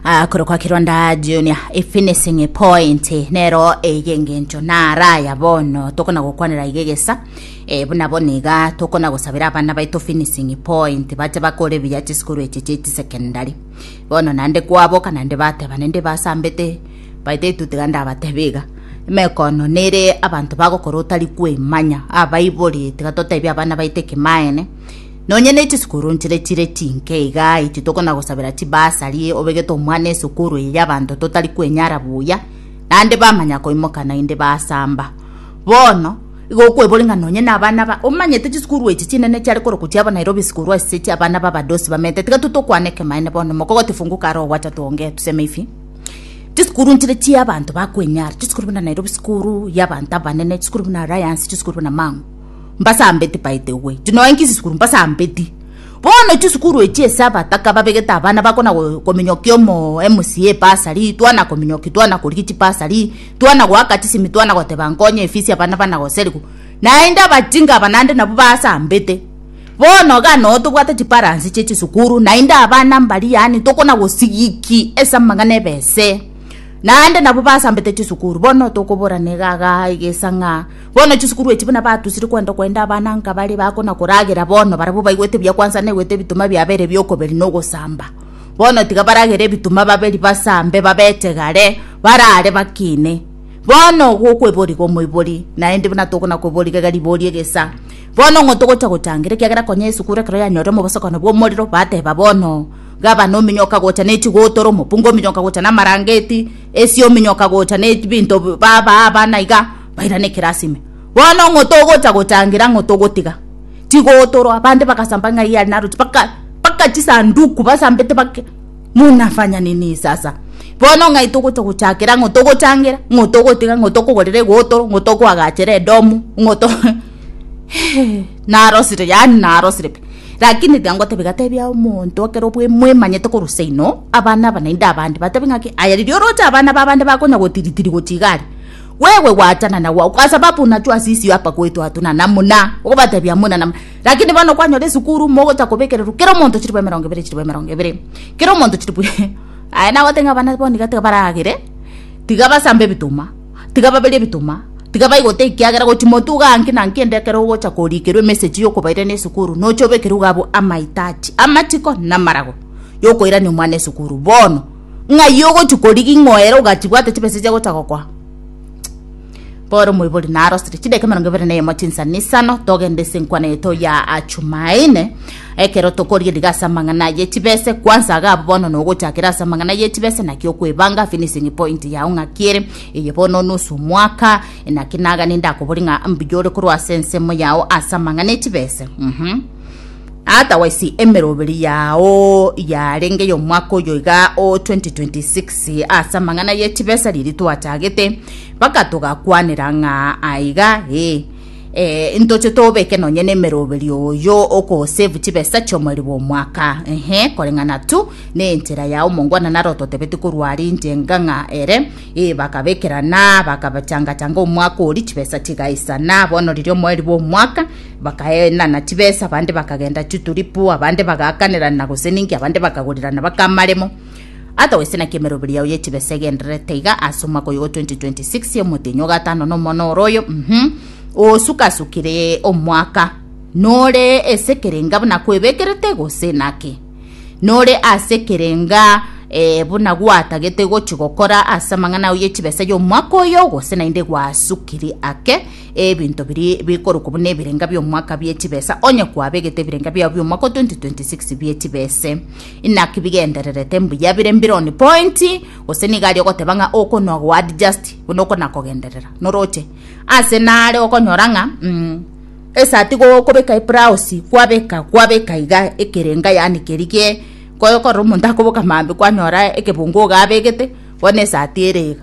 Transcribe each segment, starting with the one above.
Ah, korokwa kironda junior ifinishing point nero eye ngencho naraya bono tokona gokwanera iga egesa e, buna bono iga tokona gosabera abana baito finishing point bache bakore buya chisukuru eche chieti secondary bono nande kwaboka nande bateba nende basambete baite itutiga ndabatebe iga mekono nere abanto bagokora otari kwemanya abaibori tiga totebia abana baite kimaene Nonye ne chisukuru nchire chire chinke iga, intwe tokona-gosabera chibasari, obegete omwana esukuru eye y'abanto totari kwenyara buya, naende bamanya koimoka naende basamba. Bono, igo okwebori ng'a nonye nabana ba, omanyete chisukuru echi chinene chiare korokwa chiabo Nairobi School ase echia abana b'abadosi bamenyete, tiga tu tokwane ekemanye bono, mokogote fungu kare ogwacha twongee, tuseme ifi, chisukuru nchire chi'abanto bakwenyara, chisukuru buna Nairobi School y'abanto abanene, chisukuru buna Alliance, chisukuru buna Mang'u. mbasambeti baete owe tino enki sisukuru mbasambeti bono chisukuru echi ase abataka babegete abana bakona kominyokia omo emsie ebasari twana kominyoki twana korigia chibasari twana goaka chisemi twana goteba nkonye efisi abana bana goserigo naende abachinga aba naende nabo basambete bono iga noo tobwate chibalansi chia chisukuru naende abana mbari yaani tokona gosigiki ase amang'ana ebese naende nabo basambete chisukuru bono tokoborana iga iga iga esang'a. Bono chisukuru echi buna batusire kwenda okoenda abana nkabare bako na koragera bono barabwo baigwete buya kwansa naigwete ebituma biabere bi'okoberi na ogosamba. Bono tiga baragere ebituma baberi basambe babete gare barare bakine. Bono gokweboriga omoibori naende buna tokona kweboriga iga ribori egesa. Bono ng'o togocha gochangera ekiagera konya esukuru ekero yanyore omobosokano bw'omorero bateba bono gabana ominyo okagocha ne chigotora omopungu ominyo okagocha na amarangeti esi ominyo okagocha ne ebinto babaa abana iga. bairane kera ase ime. Bono ng'o togocha gotangera ng'o togotiga? Tigotorwa. Bande bagasamba ng'ai are naroche mpaka mpaka chisanduku basambete bake munafanya nini sasa? Bono ng'ai togocha gochakera ng'o togochangera ng'o togotiga ng'o tokogorera egotoro ng'o tokoagachera edomu ng'o to Hehe narosire yaani narosire pi. Rakini tiga ngotebi gatebia omonto ekero bwe mwemanyete korwa seino abana aba naende abande batebi ng'aki aya riria oroche abana ba bande bakonya gotiritiri gochia iga aria. Gwewe gwachana na gwao kwasababu nacho asisio apa goetwa atu na namuna, ogobatebia muna na muna. Lakini bono kwanyora esukuru, mogocha kobekererwa kera omonto chilifu emerongo ebere, chilifu emerongo ebere, kera omonto chilifu Aye nagote ng'a abana bono iga tiga baragere, tiga basambe ebituma, tiga baberie ebituma, tiga baigote ekiagera gochi motuga nki na nki ende ekero ogocha korikerwa emessage yokobairana esukuru nocha obekerwe iga abwo amahitaji, amachiko, namarago yokoirania omwana esukuru. Bono. ng'ai ogochia korigia ing'oera ogachibwate chibesa chia gocha gokoa bono omoibori narosire chideka emerongo ebere na eyemo chinsa na isano togende ase enkwana yeto ya achumaine ekero tokoria riga ase amang'ana ye chibese kwansa iga abwo bono nogochakera ase amang'ana ye chibese naki okwebanga finishing point yao ng'aki ere eye bono nusu mwaka naki naga nindakoboria ng'a mbuya ore korwa ase ensemo yao ase amang'ana echibese mhm. Otherwise emeroberi yao yarenge yomwaka oyo iga o 2026 ase amang'ana ye chibesa riri twachagete mpaka togakwanera ng'a aiga ee eh, ntoche tobeke nonye na emeroberi oyo okosave chibesa chiomoriri bwa omwaka ehe koreng'ana tu ne enchera ya omongwana naro totebeti korwa ari inche enga ng'a ere ee bakabekerana bakabachangachanga omwaka ori chibesa chigaisana bono riria omoriri bwa omwaka Bakaenana chibesa, abande bakagenda chituripu, abande bagaakanirana gose ninki, abande bakagorirana baka amaremo. Ata gose naki emeroberi yao y'echibesa egendererete iga ase omwaka oyogo 2026 ya omotenyi o gatano na omono oro oyo, mhm, osukasukire omwaka, nore ase ekerenga buna kwebekerete gose naki? Nore ase ekerenga eh, buna gwatagete gochi gokora ase amang'ana ao y'echibesa y'omwaka oyo gose naende gwasukire ake? Ebinto biria bikorokwa buna ebirenga bi'omwaka bie chibesa, onye kwabegete ebirenga biao bi'omwaka o 2026 bie chibese, inaki bigendererete mbuya bire mbironi pointi, gose nigo aria ogoteba ng'a okonoa goadjust buna okona kogenderera. Noroche ase nare okonyora ng'a mm esaa tigo okobeka eblaosi kwabeka kwabeka iga ekerenga yaani keria gie koyo korora omonto akoboka maambia kwanyora ekebungo iga abegete bono esati ere iga.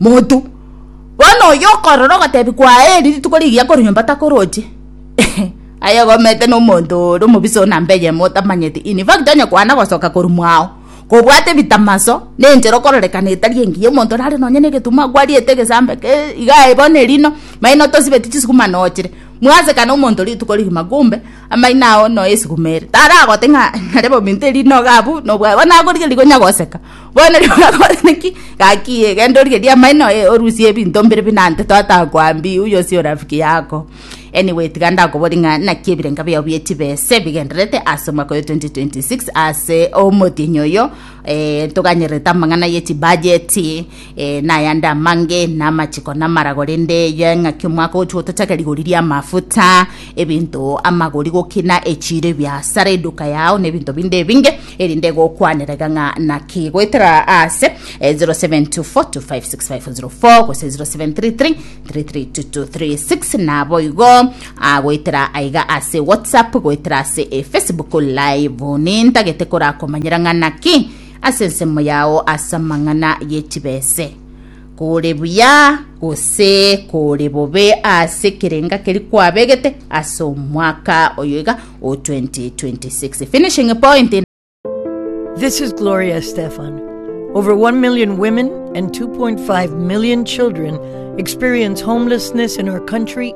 monto. Bono oyio okorora ogotebi kwaye eri rituko rigiya korwa nyomba takoroche aye gomete na omonto ore omobisa one ambe eyemo otamanyeti in fact onye kwana gosoka korwa mwao kobwate ebitamaso na enchera okororekana etari engiya omonto nare nonye na egetumo akwariete egesambe kee igaa bono erino maino tosibeti chisukuma nochire mwaseka na omonto rituko rigima kumbe amaino ago noe esuguma ere taragote ng'a nare bominto erino iga abwo nobwate bono akorigereria konya goseka. Bono rirorio gakobwatana ki? Gaki ee, genda origerie amaino, ee, orusie ebinto mbire buna ante twatakoambi, uyo osie orafiki yako. Anyway, tiga ndakobori ng'a naki ebirenga biao bie chibese bigendererete ase omwaka oyo 2026 ase omotienyi oyo eh, ntoganyererete amang'ana ye chibajeti eh, na ayande amange na amachiko na amarago rende eye ng'aki omwaka ogochi gotochaka rigori ria amafuta ebinto amagori gokina echiro ebiasara eduka yao na ebinto binde ebinge erinde gokwaneraga ng'a naki goetera ase eh, 0724256504 gose 0733332236 nabo igo ah, goetera aiga ase whatsapp goetera ase eh, facebook live nintagete korakomanyera ng'a naki ase ensemo yao ase amang'ana yechibese Kore buya gose kore bobe ase ekerenga keria kwabegete ase omwaka oyo iga o 2026. Finishing point. This is Gloria Estefan. Over 1 million women and 2.5 million children experience homelessness in our country